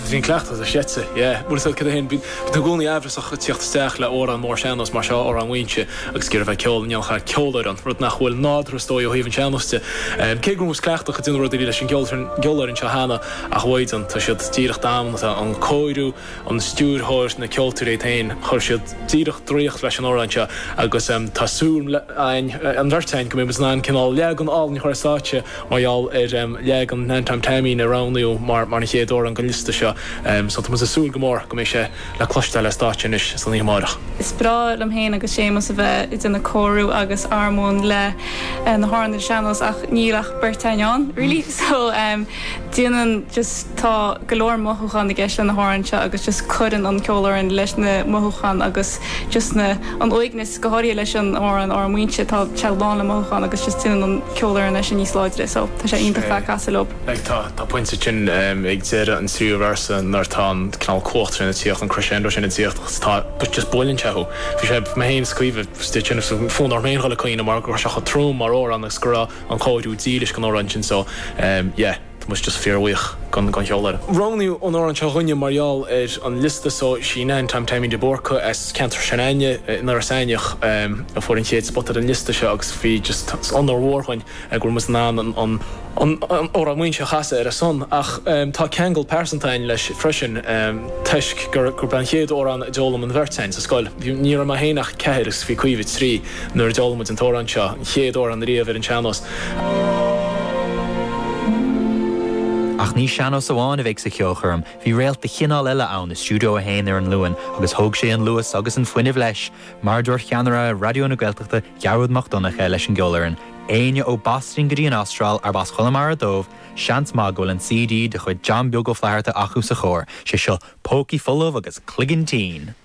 Bhí an cleachtadh ar seit, yeah. Bhuel, tá a fhios agat fhéin, bíonn tú i gcónaí aimhreasach ag teacht isteach le amhrán mór sean-nós mar seo, amhrán Mhaínse, agus giorra bheith ceol, ní dhéanfadh a dhath ceolfhoireann, rud nach bhfuil nádúrtha is dóigh ó thaobh an sean-nós de. Cé go raibh muid cleachtach ag déanamh rudaí leis an gceolfhoireann seo cheana, ach mhaighdean, tá siad díreach damanta, an cóiriú, an stiúrthóir, na ceoltóirí iad féin, chuir siad díreach draíocht leis an amhrán seo agus tá súil againn, an bheirt againn, go mbeidh muid in ann cineál leagan álainn a chur ar stáitse mar gheall ar leagan Nan Tom Taimín a roghnaíodh mar an chéad amhrán den liosta seo so tá muid ag súil go mór go mbeidh sé le cloisteáil ar stáitse anois san oíche amárach. Is breá liom féin agus Séamus a bheith ag déanamh cóiriú agus armóin le na hamhráin ar sean-nós ach níl ach beirt againn ann really so déanann just tá go leor mothúchán i gceist le na hamhráin seo agus just cuireann an cheolfhoireann leis na mothúcháin agus just na an uaigneas go háirithe leis an amhrán Mhaínse tá sé lán le mothúchán agus just déanann an cheolfhoireann é sin níos láidre so tá sé iontach a bheith ag casadh leob. Like tá tá pointe ansin um ag deireadh an tríú véarsa nuair tá an cineál cumhacht sin ag tíocht an crescendo sin ag tíocht agus tá but just buaileann sé thú. Bhí sé mé féin is Caoimhe just é sin so fonn orm féin dhul ag caoineadh mar go raibh sé chomh trom mar amhrán agus go raibh an cóiriú dílis don amhrán sin so yeah tá muid just fíorbhuíoch don cheolfhoireann. Roghnaíodh an amhrán seo dúinne mar gheall ar an liosta so sí Nan Tom Taimín de Búrca as ceantar s'againne in Iorras Aithneach a fuair an chéad spota ar an liosta seo agus bhí just is onóir mhór dhúinn go raibh muid in ann Amhrán Mhaínse a chasadh ar a son ach tá ceangal pearsanta againn leis freisin toisc gurb é an chéad amhrán a d'fhoghlaim an bheirt againn sa scoil. Ní raibh mé féin ach ceathair agus bhí Caoimhe trí. nuair a d'fhoghlaim muid an t-amhrán seo an chéad uair ariamh ar an sean-nós. Ach ní sean-nós amháin a bheidh sa cheolchoirm, bhí réalt de chineál eile ann i Stiúideo 1 ar an Luan agus thóg sé an luas agus an fuinneamh leis, mar a dúirt ceannaire Raidió na Gaeltachta Gearóid Mac Donncha leis an gceolfhoireann, Éinne ó Bhoston go dtí an Astráil arb as Chonamara dóibh, seans maith go bhfuil an CD de chuid John Beag Ó Flatharta acu sa charr, sé seo, pócaí folamh agus cloigeann tinn!